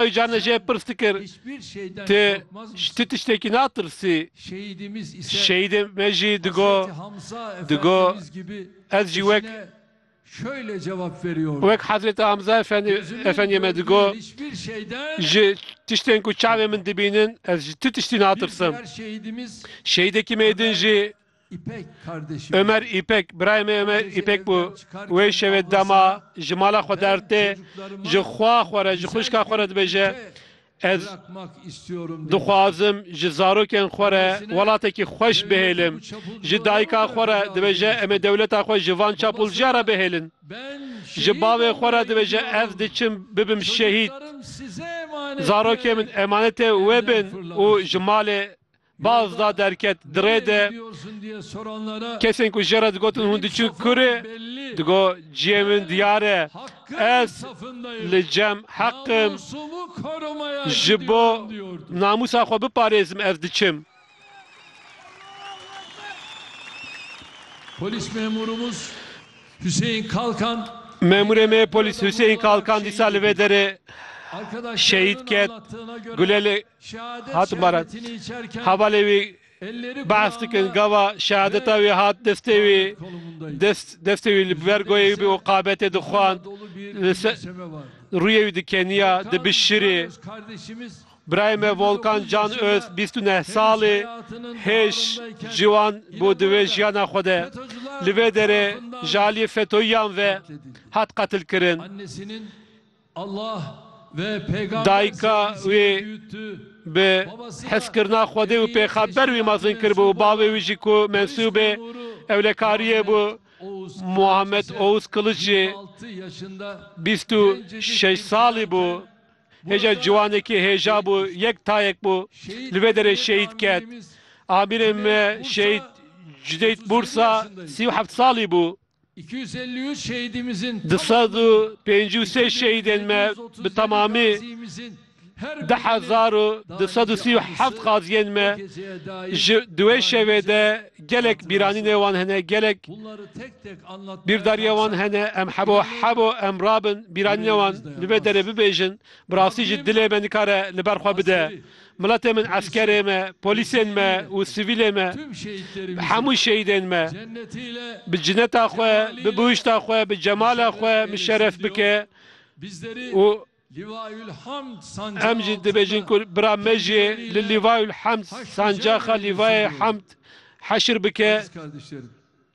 Ocalan jê pirs dikir, Tu ji ti tiştekî natirsî? Şehîdê me jî digot, digot, Ez jî wek wek Hezretê Hamza Efendî Efendiyê me digot, Ji tiştên ku çavên min dibînin, ez ji ti tiştî natirsim. Şehîdekî me din jî. Ömer Îpek, Birayê me Ömer Îpek bû. Wê şevê dema ji mala xwe der tê, ji xwa xwe re, ji xwişka xwe re dibêje, Ez dixwazim ji zarokên xwe re welatekî xweş bihêlim. Ji dayika xwe re dibêje em ê dewleta xwe ji van çapulciya re bihêlin. Ji bavê xwe re dibêje ez diçim bibim şehîd. Zarokên min emanetê wê bin û ji malê Baz da derket di rê de kesên ku jê re digotin hûn diçûn kurê, digot ciyê min diyar e, ez li cem heq im, ji bo namûsa xwe biparêzim ez diçim. Memûrê me polîs Huseyîn Kalkan dîsa li vê derê şehîd ket. Gule li Hat baran. Hevalê wî behs dikin gava şehadeta wî hat destê wî dest destê wî li ber goyê wî bû û qabetê dixwand li ser rûyê wî dikeniya dibişirî. Birayê me Volkan Can Öz bîst û neh sal e, hêj, ciwan bû di vê jiyana xwe de. Li vê derê ji aliyê fetoyiyan ve hat qetilkirin. Dayika wî bi hezkirina Xwedê û pêxember wî mezin kiribû û bavê wî jî ku mensûbê ewlekariyê bû Muhammed Ouz Kiliç jî bîst û şeş salî bû. Hêja ciwanekî hêja bû, yek tayek bû. Li vê derê şehîd ket. Amirê me şehîd Cudeyt Bursa sî û heft salî bû. Du sed û pêncî û sê şehîdên me bi temamî du hezar û du sed û sî û heft qaziyên me ji di wê şevê de gelek bîranînê wan hene gelek bîrdarîya wan hene em hebo hebo em rabin bîranîna wan li vê derê bibêjin bi rastî jî dilê me nikare li ber xwe bide Miletê min, eskerê me, polîsên me û sivîlê me, bi hemû şehîdên me, bi cineta xwe, bi bihuşta xwe, bi cemala xwe muşerref bike û em jî dibêjin ku bira me jî li Lîvayul Hemd, sancaxa Lîvayê Hemd heşr bike.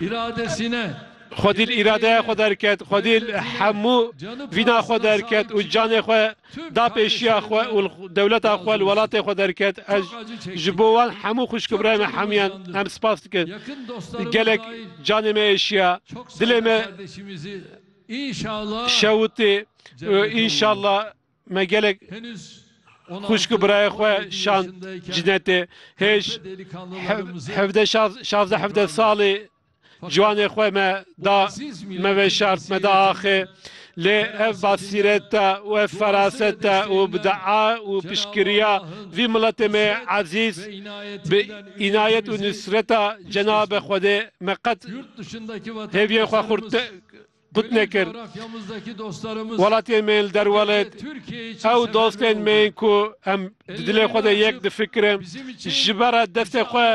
îradesîne. Xwedîl îradeya xwe derket, xwedîl hemû vîna xwe derket û canê xwe da pêşiya xwe û li dewleta xwe, li welatê xwe derket. Ez ji bo wan hemû xwişk û birayê me hemûyan em spas dikim. Gelek canê me êşiya, dilê me şewitî û înşallah Me gelek xwişk û birayê xwe şand cinetê hêj hevdeh şazdeh hevdeh salî ciwanê xwe me da me veşart me da axê lê ev basîreta û ev feraseta û bi dua û piştgiriya vî miletê me ezîz bi înayet û nusreta cenabe xwedê me qet hêviyên xwe Gut nekir. Welatiyên me yên li derwelet, ew dostên me yên ku em di dilê xwe de yek difikirin, ji ber re destê xwe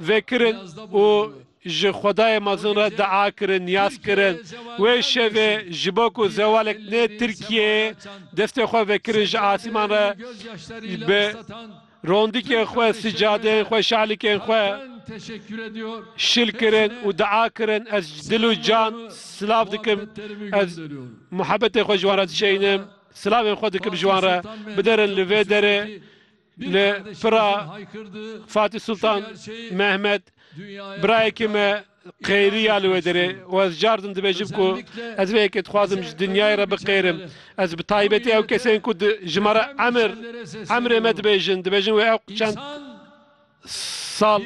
vekirin û ji xwedayê mezin re dua kirin, niyaz kirin. Wê şevê ji bo ku zewalek nê Tirkiyeyê destê xwe vekirin ji asîman re bi. Rondikên xwe, sicadeyên xwe, şalikên xwe şil kirin û dua kirin, ez ji dil û can silav dikim, ez muhebetê xwe ji wan re dişeyînim, silavên xwe dikim ji wan re, biderin li vê derê li pira Fatî Sultan Mehmet, birayekî me, Qêriya li wê derê û ez car din dibêjim ku ez vê yekê dixwazim ji dinyayê re biqêrim. Ez bi taybetî ew kesên ku di ji me re emir, emrê me dibêjin, dibêjin wê ew çend sal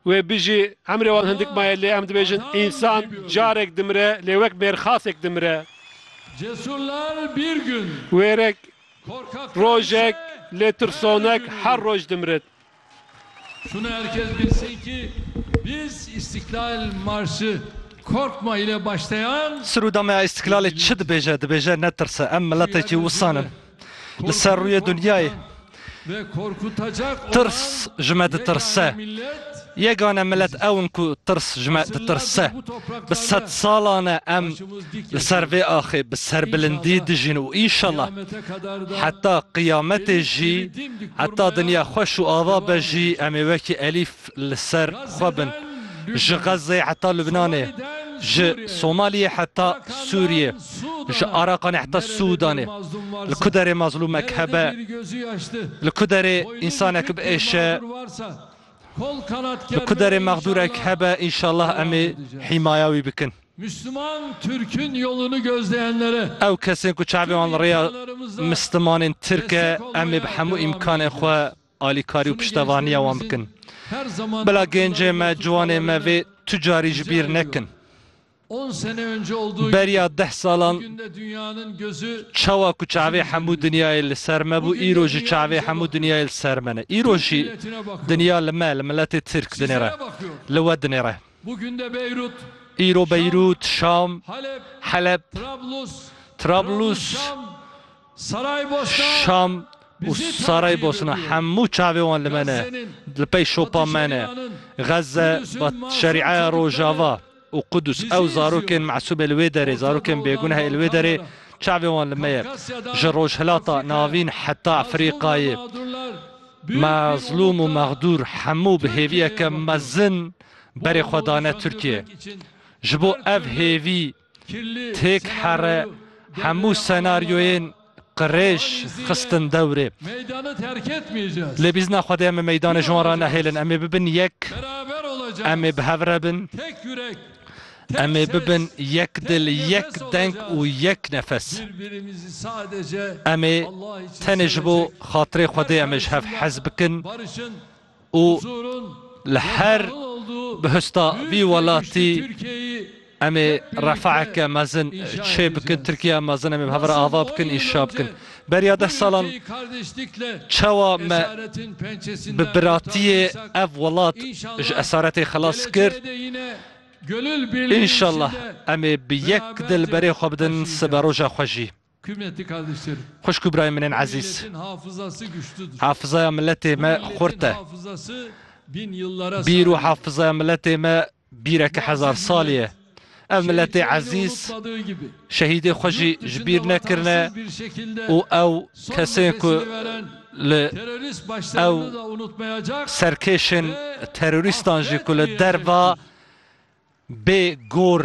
wê bijî, emrê wan hindik maye lê em dibêjin însan carek dimire lê wek mêrxasek dimire. Wêrek, rojek lê tirsonek her roj dimirin. Şunu her kes bilsin ki biz İstiklal Marşı korkma ile başlayan. Siruda me ya İstiklalê çi dibêje? Dibêje ne tirse em miletekî wisan in li ser rûyê dunyayê. Tirs ji me ditirse. Yegane milet ew in ku tirs ji me ditirse. Bi sed salan e em li ser vê axê bi serbilindî dijîn û înşallah heta qiyametê jî, heta dinya xweş û ava be jî em ê wekî elîf li ser xwe bin. Ji Xezzeyê heta Lubnanê, ji Somaliyê heta Sûriyê, ji Araqanê heta Sûdanê, li ku derê mazlûmek hebe, li ku derê însanek biêşe, li ku derê mexdûrek hebe, înşallah em ê hîmaya wî bikin. Misliman Türk'ün yolunu gözleyenlere. Ew kesên ku çavê wan li rêya Mislimanên Tirk e, em ê bi hemû îmkanên xwe alîkarî û piştevaniya wan bikin. Bila gêncên me, ciwanên me vê tu carî ji bîr nekin. Beriya deh salan çawa ku çavê hemû dinyayê li ser me bû, îro jî çavê hemû dinyayê li ser me ne. Îro jî dinya li me, li miletê Tirk dinêre, li we dinêre. Îro Beyrût, Şam, Heleb, Trablûs, Şam û Saraybosna hemû çavê wan li me ne, li pey şopa me ne. Xezze, Şerîaya Rojava û Qudus ew zarokên mesûb ê li wê derê, zarokên bêguneh ê li wê derê çavê wan li me ye. Ji Rojhilata Navîn heta Efrîqayê. Mezlûm û mexdûr hemû bi hêviyeke mezin berê xwe dane Tirkiyeyê. Ji bo ev hêvî têk here hemû senaryoyên qirêj xistin dewrê. Lê bîzna Xwedê em ê meydanê ji wan re nehêlin. Em ê bibin yek, em ê bi hev re bin. Em ê bibin yek dil, yek deng û yek nefes. Em ê tenê ji bo xatirê Xwedê em ê ji hev hez bikin û li her bihuşta vî welatî em ê refaheke mezin çêbikin. Tirkiyeya mezin em ê bi hev re ava bikin, înşa bikin. Beriya deh salan çawa me bi biratiyê ev welat ji esaretê xilas kir. Înşallah em ê bi yek dil berê xwe bidin sibe roja xwe jî. Xwişk û birayên min ên ezîz. Hafizaya miletê me xurt e. Bîr û hafizaya miletê me Bîreke hezar salî ye. Ev miletê ezîz şehîdê xwe jî ji bîr nekirine û ew kesên ku li ew serkêşên terorîstan jî ku li derva bê gor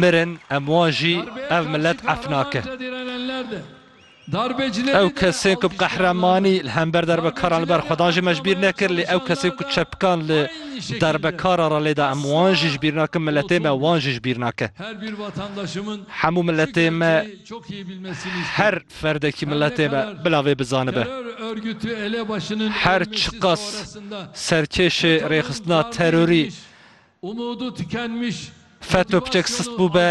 mirin em wan jî ev milet ef nake. Ew kesên ku bi qehremanî li hember derbekaran li ber xwe dan jî me ji bîr nekir, lê ew kesên ku çepkan li derbekara re lêda em wan jî ji bîr nakin, miletê me wan jî ji bîr nake. Hemû miletê me, her ferdekî miletê me bila vê bizanibe. Her çiqas serkêşê rêxistina terorî Feto piçek sist bûbe,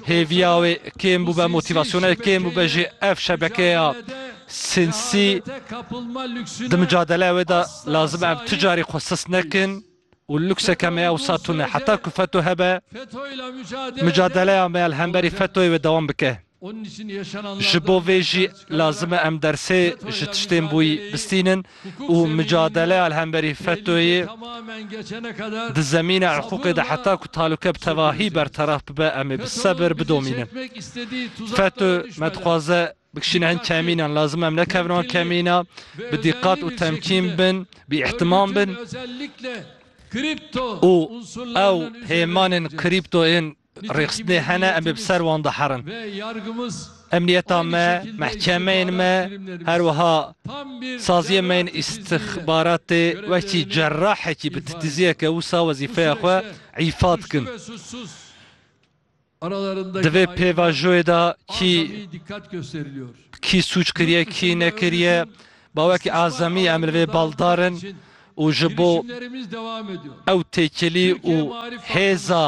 hêviya wê kêm bûbe, motîvasyona wê kêm bûbe jî ev şebekeya sînsî di micadeleya wê de lazim e em tu carî xwe sist nekin û lukseke me ewsa tune. Heta ku feto hebe, micadeleya me ya li hemberî fetoyê wê dewam bike. Ji bo vê jî lazim e em dersê ji tiştên bûyî bistînin û micadeleya li hemberî FETÖ'yê di zemîna hiqûqê de heta ku talûke bi tevahî berteraf bibe em ê bi sebir bidomînin. FETÖ me dixwaze bikişîne hin kemînan, lazim e em nekevin wan kemîna, bi dîqat û temkîn bin, bi îhtimam bin û ew hêmanên krîpto yên Rêxistinê hene, em ê bi ser wan de herin. Emniyeta me, mehkemeyên me, her wiha saziyên me yên îstixbaratê wekî cerrahekî bi titiziyeke wisa wezîfeya xwe îfa dikin. Di vê pêvajoyê de kî bi kî sûc kiriye, kî nekiriye, ba wekî azemî em li vê baldar in û ji bo ew têkilî û hêza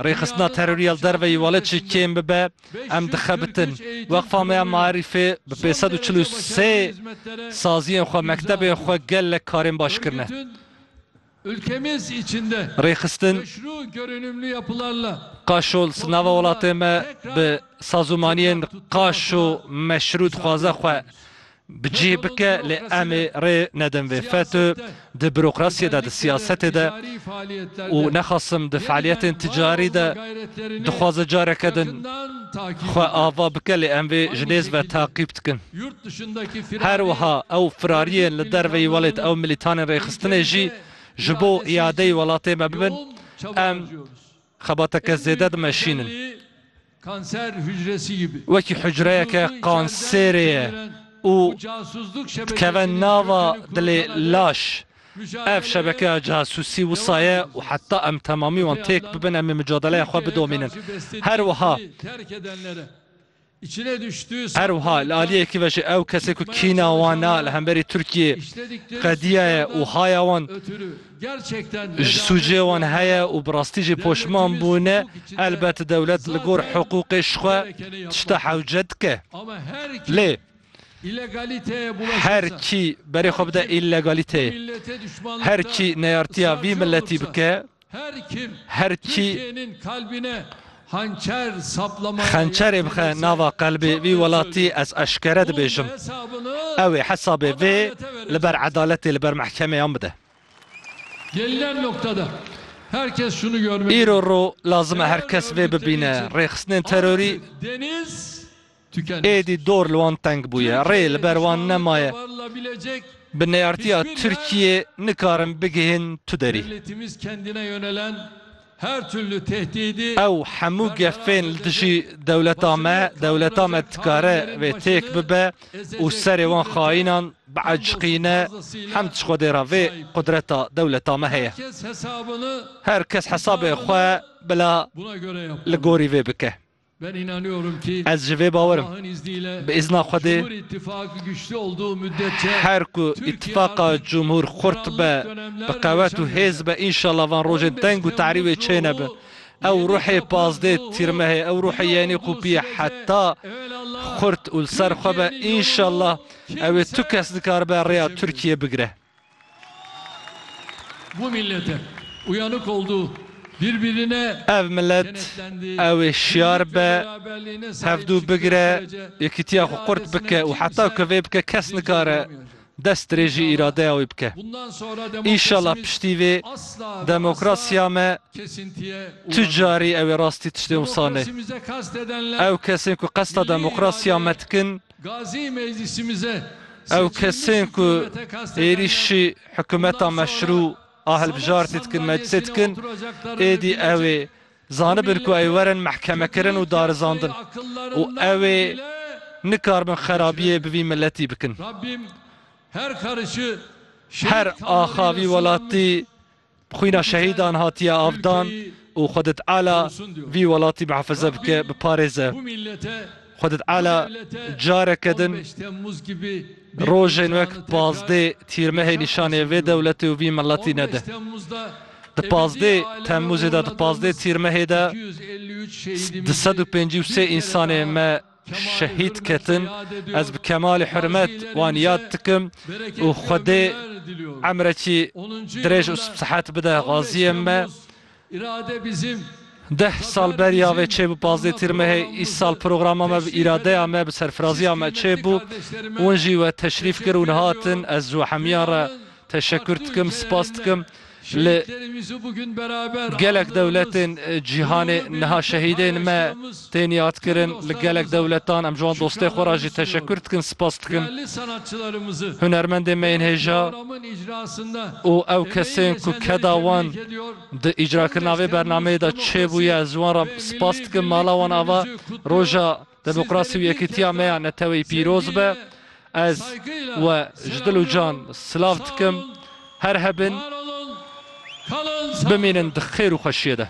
Rêxistina terorî ya li derveyî welê çi kêm bibe, em dixebitin. Weqfa me ya Maerîfê bi pênc sed û çil û sê saziyên xwe, mektebên xwe gelek karên baş kirine. Rêxistin Qaşolz nava welatê me bi sazûmaniyên qaş û meşrû dixwaze xwe bi cih bike lê em ê rê nedin vê FETÖ di bürokrasiyê de, di siyasetê de û nexasim di fealiyetên ticarî de dixwaze careke din xwe ava bike lê em vê ji nêz ve taqîb dikin. Her wiha ew firariyên li derveyî welêt ew milîtanên rêxistinê jî ji bo îadeyî welatê me bibin em xebateke zêde dimeşînin. Kanser hücresi gibi. Wekî hucreyeke kanserê ye û dikeve nava dilê laş. Ev şebekeya casûsî wisa ye û heta em temamî wan têk bibin em ê micadeleya xwe bidomînin. Her wiha Her wiha li aliyekî ve jî ew kesê ku kîna wan a li hemberî Tirkiyê qediyaye û haya wan Ji sûcê wan heye û bi rastî jî poşman bûne, elbet dewlet li gor hiqûqê ji xwe tişta hewce dike. Lê her kî berê xwe bide îlegalîteyê, her kî neyartiya vî miletî bike, her kî Xençerê bixe nava qelbê vî welatî ez eşkere dibêjim ew ê hesabê vê li ber edaletê li ber mehkemeyan bide. Îro ro lazim e her kes vê bibîne, rêxistinên terorî, Êdî dor li wan teng bûye, rê li ber wan nemaye. Bi neyartiya Tirkiyê nikarin bigihên tu derî. Ew hemû gefên li dijî dewleta me, dewleta me dikare vê têk bibe û serê wan xayînan biaciqîne hemd ji Xwedê re vê qudreta dewleta me heye. Her kes hesabê xwe bila li gorî vê bike. Ez ji vê bawer im. Bi îzna Xwedê, her ku îtîfaqa cumhûr xurt be, bi qewet û hêz be înşallah van rojên teng û terî wê çê nebin. Ew ruhê pazdê tîrmehê, ew ruhê yenî qûpiyê heta xurt û li ser xwe be, înşallah ew ê tu kes dikaribe rêya Tirkiyeyê bigire. Bu millet e. Uyanık oldu. Birbirine. Ev millet ewê şiyar be, hevdû bigire, yekîtiya xwe qurt bike û heta ku vê bike kes nikare dest dirêjî îradeya wî bike. Înşallah piştî vê demokrasiya me tu carî ewê rastî tiştê wisa nê. Ew kesên ku qesta demokrasiya me dikin, Ew kesên ku êrîşî hikumeta meşrû a hilbijartî dikin meclisê dikin, êdî ew ê zanibin ku ew werin mehkemekirin û darizandin û ew ê nikaribin xerabiyê bi vî miletî bikin. Her axa vî welatî Xwîna şehîdan hatiye avdan û Xwedê Teala vî welatî mihefeze bike, biparêze. Xwedê Teala careke din rojên wek pazdê Tîrmehê nîşanê vê dewletê û vî miletî nede. Di pazdê Temmûzê de di pazdê Tîrmehê de di sed û pêncî û sê însanê me, Şehîd ketin, ez bi kemalî hurmet wan yad dikim û Xwedê emrekî dirêj û sihet bide xaziyên me. Deh sal beriya vê çêbû pazdeh tîr mehê, îsal programa me bi îradeya me, bi serfiraziya me çêbû, wan jî we teşrîf kir û hatin, ez ji we hemiyan re Teşekkür dikim, spas dikim li gelek dewletên cîhanê. Niha şehîdên me tên yadkirin li gelek dewletan. Em ji wan dostê xwe ra jî teşekkür dikin, spas dikin. Hunermendên me yên hêja û ew kesên ku keda wan di îcrakirina vê bernameyê de çêbûye, ez ji wan ra spas dikim. Mala wan ava roja Demokrasî û yekîtiya me ya neteweyî pîroz be. Ez we ji dil û can silav dikim. Her hebin, bimînin di xêr û xweşiyê de.